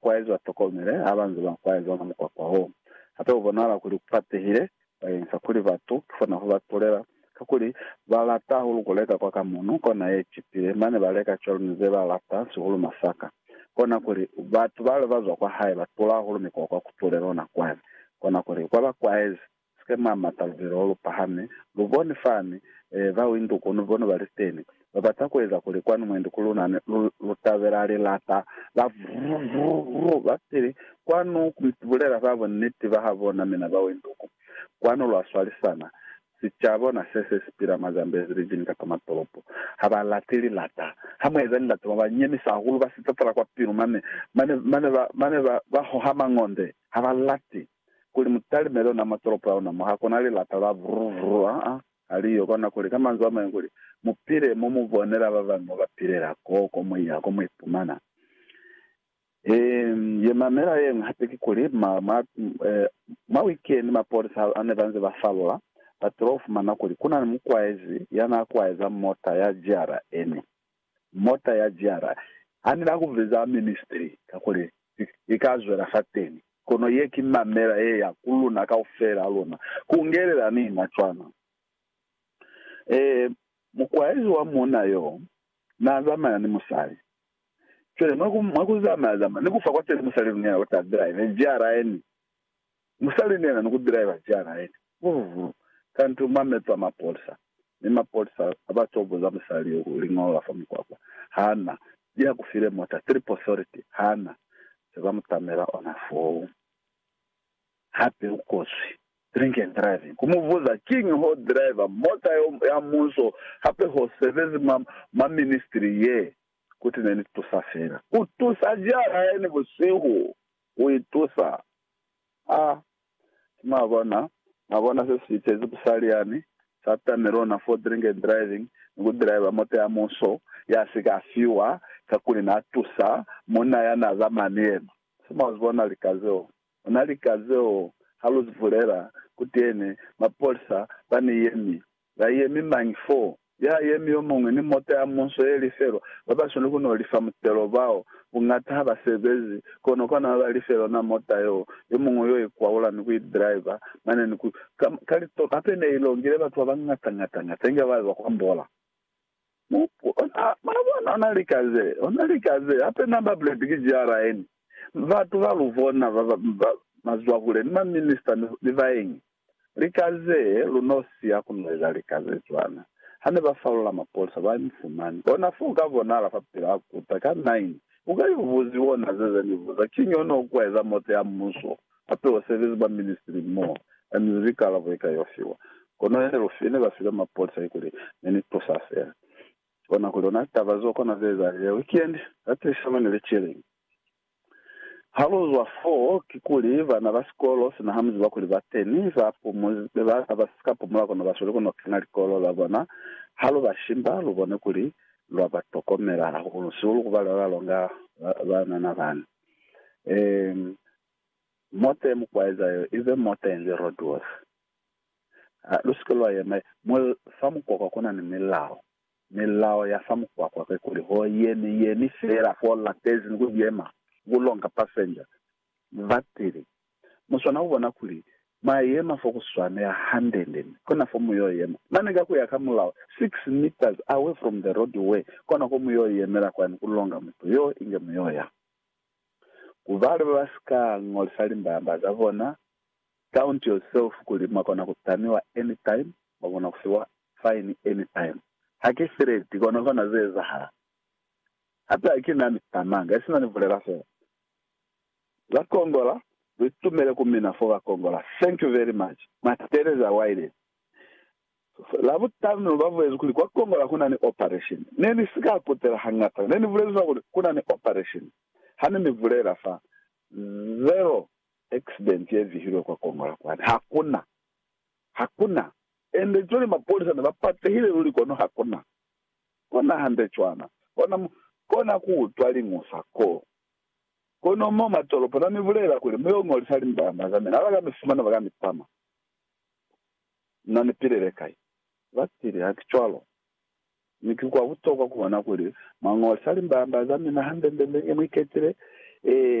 kwaezi ba tokomele ha ba nze ba kwaeza ona mukwakwa wo. Hape ku bonahala kuli ku patehile bakeng sa kuli batu ki fona ku ba tulela, kakuli ba lata hahulu ku leka kwa ka munu kona ye icipile, mane ba leka cwalo ni ze ba lata sihulu masaka. Kona kuli batu bale ba zwa kwa hae ba tula hahulu mikwakwa ku tulela ona kwae, kona kuli kwa ba kwaezi Sika mwa mata lubilo olu pahame. Lu boni fani, e, ba windu kono bona ba liteni. Ba bata kueza kuli kwanu mwendi ku lunane, lu, lu tabela lilata la vrrrrrrr, ba pili kwanu ku bulela ba bunniti ba ha bona, mina ba windu ku. Kwanu lwa swalisana. Sicabo na se, se si pila mwa Zambezi, lijini kapa matolopo, ha ba lati lilata. Ha mu eza lilata, ba ba nyemisa hahulu, ba sitatala kwa pilu mane, mane, mane ba, mane ba, ba hoha mangonde. Ha ba lati. kuli mu talimele ona matolopo a ona mo ha kona lilata la vru vru a a ha li yo kona, kuli ka manzwi a mañwi kuli mu pile mo mu bonela ba bañwi mo ba pilela, ko, ko mu ya, ko mu ipumana. Eem, ye mamela yeñwi hape ki kuli, ma, ma, e, mwa wikeni mapolisa ha a ne ba nze ba falola, ba tolo fumana kuli ku na ni mukwaezi ya na kwaeza mota ya JRN. mota ya jiara ha ni na ku veza ministry kakuli i ka zwela fateni. Kono ye ki mamela ye ya ku luna kaufela luna, ku ungelela ni na cwana. Ee, mukwaezi wa muuna yo na zamaya ni musali. Cwale mwa ku zamaya zamaya ni ku fa kwateni musali luna ya ku ta drive jiara ye ni Musali nena ni kubilaelwa jana yene vulu-vulu kantu mameto a mapolisa, mi mapolisa aba coboza musali yo ku liñolo la fa mukwakwa. Hana li ha kufile mota Trip Authority, hana se ba mutamela ona foo. Hape u kozwi drink and driving. Ku mu buza kiñi ho driver mota yo ya munso hape ho sebezi mwa mwa ministry ye, kuti ne ni tusa fela. Ku tusa jana yene busihu. Ku itusa. A ki mwabona, mwabona se si iteezi busali yani, sa tamilwe ona for drink and driving, ni ku driver moto ya muso, ya si ka fiwa, kakuli na tusa munna ya na zamaya ni yena. Se mwa zibona lika zeo. Ona lika zeo, ha lu zibulela, kuteni, mapolisa ba ni yemi, Ba yemi mañi fo? Ya yemi yo muñwi ni mota ya munso ye lifelwa. Ba ba swaneli ku no lifa mutelo bao. Buñata ha ba sebezi, kono kwa nama ba life lona mota yo. Yo muñwi yo i kwaula ni ku i driver mane ni ku. Ka, ka litolo hape ne i longile batu ba bañata-ñata-ñata inge ba ba kwa mbola. Mupu ona, mwabona, ona lika ze, ona lika ze, hape namba plate ki GRN. Batu ba lubona ba, ba, ba, ba mazwahule ni ma minista ni, ni baeñi. Lika ze, lu no si ya ku no eza lika ze cwana. Hane ba falola mapolisa, ba mi fumani. Kona fo uka bonahala fa pila ha kuta, ka nine. Uka yo buziwa ona ze, ze ni buza, Kiñi ono ku eza moto ya Muso? Hape basebezi ba ministri mo ba ni likalabo eka yo fiwa. Kono ya Delphine ne ba file mapolisa ikuli ne ni tusa fela. Kona kuli ona taba zo kona ze ezahala ya weekend za tilisano ni lecturing. Ha lu zwa foo kikuli bana ba sikolo, sina ha mu ziba kuli ba teni, ba pumuzi be ba ka ba si ka pumula kono ba sweli ku no kena likolo za bona. Ha lu ba shimba, lu bone kuli lwa ba tokomela hahulu, sihulu ku ba lwa ba longa banana bani. Um, mota ye mukwaeza yo ibe mota yenze roadworth. Uh, lu sike lwa yema. Mul, fa mukwakwa kuna ni milao. Milao ya fa mukwakwa ke kuli ho yemi, yemi fela fo latezi ni ku yema, ni ku longa passenger. Batili, Mu swana ku bona kuli mwa yema fo ku swanela hande-nde mi kona fo mu yo yema. Mane ka ku ya ka mulao, six meters away from the road way, kona ko mu yo yemela kwani ku longa mutu yo inge mu yo ya. Ku ba le ba ba si ka ñolisa limbamba za bona, count yourself kuli mwa kona ku tamiwa anytime, mwa kona ku fiwa fine anytime. Ha ki threat, kono fana ze ezahala. Hape ha ki na ni tamanga, isina ni bulela fela. Ba kongola lu tumele ku mina fo ba kongola thank you very much ma Teresa Wiley labutanu ba bulezi kuli kwa kongola ku na ni operation ne ni si ka kutela hangata ne ni bulezi fa kuli ku na ni operation ha ne ni bulela fa zero accident ye vihilwe kwa kongola kwani ha ku na ha ku na ende cwale mapolisa ne ba patehile luli kono ha ku na kona hande cwana kona kona ku utwa liñusa ko Kono mo mwa tolopo na mi bulela kuli, Mu yo ngolisa limbamba za mina, ha ba ka mi fumana ba ka mi tama. Na ni pilele kai? Ba tili, Ha ki cwalo. Mi ki kwa butokwa ku bona kuli mwa ngolisa limbamba za mina hande nde nde nge mu iketile. Ee.